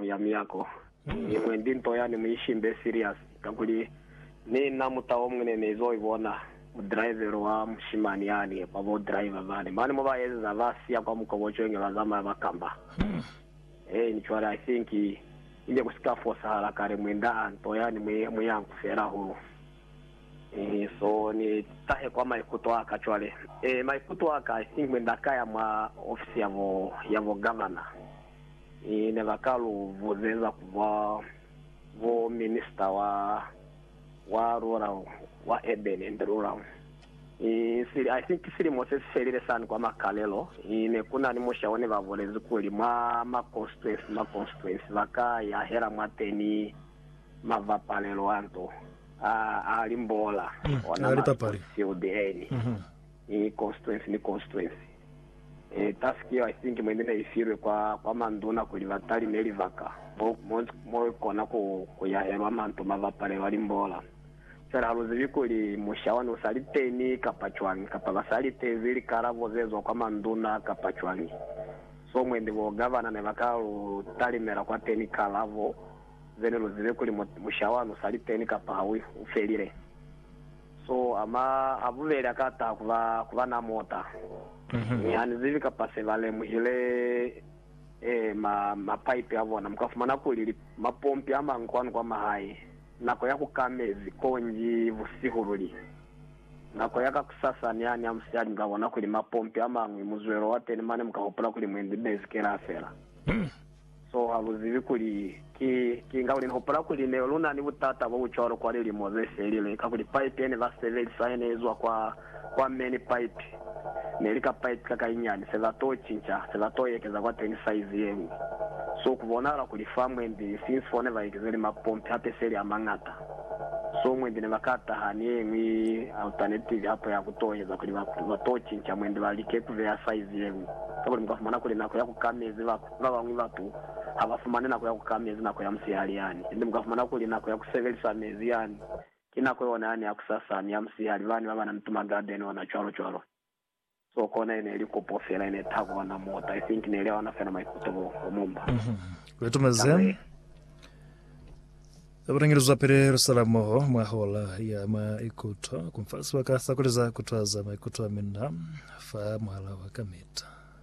ya miyako ni mwendi nto yani mu ishimbe serious kakuli ni na mutao mune ni zo ibona mu drivel wa mushimani yani kwa bo driver bane mane mo ba ezeza ba siya kwa mukobocwe nge ba zamaya ba kamba en cwale I think ine ku sika fosahala kale mwenda a nto yani mwi muyanku fela hahulu en so ni tahe kwa maikuto aka cwale en maikuto aka I think mwenda ka ya mwa office ya bo ya bo governor ne ba ka lu buzeza ku ba bo Minisita wa, wa lula wa Urban and Rural. Sili, I think silimo se si felile sani kwa Makalelo, ne ku na ni musha o ne ba bulezi kuli mwa ma constituency, ma constituency ba ka yahela mwateni mavapalelo a nto a, a limbola, ona ma sports field eni. I constituency ni constituency. E task yeo I think mwine ne ifilwe kwa kwa manduna kuli ba talime libaka mo mo mo kona ku ku yahelwa manto ma bapalelwa limbola. Fela ha lu zibi kuli musha wani u sa li teni kapa cwani kapa ba sa litezi likalabo ze zwa kwa manduna kapa cwani. So mwende bo gavana ne ba ka lu talimela kwa teni kalabo zene lu zibe kuli musha wani u sa li teni kapa ha u felile. So ama a bubeli akata kuba kuba na mota, mi hanizibi kapa se ba lemuhile e ma ma pipe a bona. Muka fumana kuli li mapompi a mangi kwanu kwa mahae. Nako ya ku ka mezi konji busihu luli. Nako ya kakusasa niha ni a musiyali muka bona kuli mapompi a mangwi muzwelo wa teni mane muka hupula kuli mwendi mezi kela fela. So ha lu zibi kuli ki kiñi, kakuli ni hupula kuli ne lu na ni butata bo bu cwalo kwa lilimo ze felile, kakuli paipi ye ne ba sebelisa ye ne izwa kwa, kwa me, ni paipi ne li ka paipi ka kainyani. Se ba t'o cinca, se ba t'o ekeza kwateni saizi ye ñwi. So ku bonahala kuli fa mwendi, since fo ne ba ekezeli mapompi hape seli a mañata, so mwendi ne ba ka taha ni ye ñwi alternative hape ya ku t'o eza, kuli ba, ba t'o cinca mwendi ba like ku beya saizi ye ñwi, kakuli mu ka fumana kuli nako ya ku ka mezi ba, Ba bañwi batu ha ba fumani nako ya ku ka mezi nako ya musihali yani, niti mu ka fumana kuli nako ya ku sebelisa mezi yani ki nako yona yani ya kusasa ni ya musihali. Bani ba ba na ni tuma garden ona cwalo cwalo. So kona ine ili kopo fela ine ita ku ba na mota. I think ne ili aona fela maikuto bo bo mumba. Re tumeze Nyakuye. Za bulengeli zwa pili lu sala moho mwa hola ya maikuto. Ku mfa sibaka sa ku liza ku twaza maikuto a mina fa muhala wa kamita.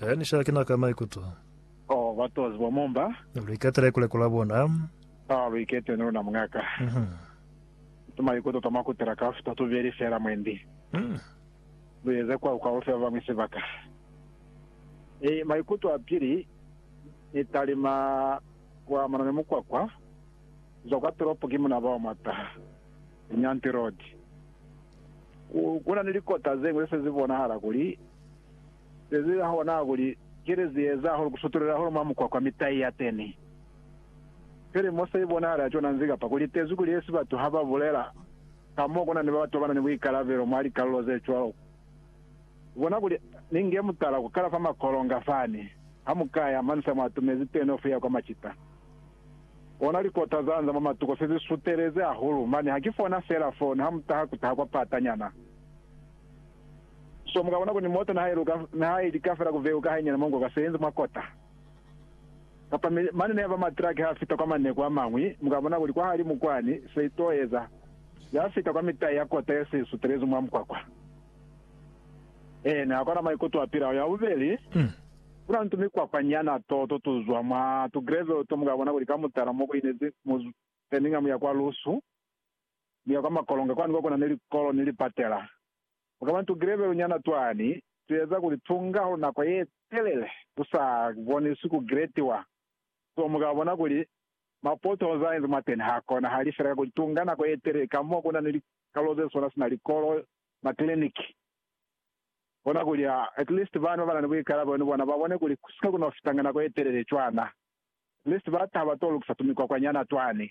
He, ni sha kena ka maikuto. Oh, ba tozi bo mumba. Lu iketele ku lekola bona. Oh, lu ikete ni luna, muñaka. Mm-hmm. Tumaikuto twa mwa kutela kaufi twa tubeli fela, mwendi. Mm. Lu eze kwa kwa ufe ba bañwi sibaka. Ni maikuto a pili, ni talima kwa mano ni mukwakwa, kuzwa kwa tolopo ki muna bao mwa taha, Nyanti Road. Ku, kuna ni likota zeñwi ze se zi bonahala kuli Zeziza hona hakuli, kili zieza hahulu kusutulela hahulu mwa mukwa kwa mitai yateni. Feli mo se ibonahala cona nzi kapa kuli tezwi kuli esi batu ha ba bulela ka mo kuna ni ba ba tobana ni buikalabelo mwa likalulo ze cwalo. Ku bona kuli, ni nge mutala ku kala fa makolonga fani, ha mu ka ya mani sa mwa atumezi teni ofi ya kwa macita. Ona likota za nza mwa matuko se zi sutelezi hahulu mani ha ki fona fela foni ha mu taha ku taha kwa pata nyana. So mukabona kuli moto nihaili kafela kuveu ka hainyana mongo ka senzi mwa kota. Kapa mi mane nihaba ma truck ha fita kwa maneku amañwi, mukabona kuli kwahalimu kwani se ito eza, ya fita kwa mitai ya kota ye se sutelezi mwa mukwakwa. Ee, ni hakona maikuto a pilaho. Ya bubeli, kuna ni tu mikwakwa nyana to to tuzwa mwa tu gravel to mukabona kuli ka mutala mo kuinezi mu Birmingham ya kwa lusu, mi ya kwa makolonga kwani kwa kuna ni likolo ni lipatela. Ku ka ba ni tugelebelu nyana twani tu eza kuli tu nga ho nako ye telele ku sa boniswi ku gretiwa. Kono mu ka bona kuli mapotoholo za enzi mwateni ha konahali fela ka kuli tu nga nako ye telele ka mo ku na ni likalo ze swana sina likolo, makliniki. Bona kuli at least bani ba ba na ni buikalabelo ni bona ba bone kuli ku si ka ku no fitanga nako ye telele cwana. At least ba taha ba to lukisa tumikwakwanyana twani.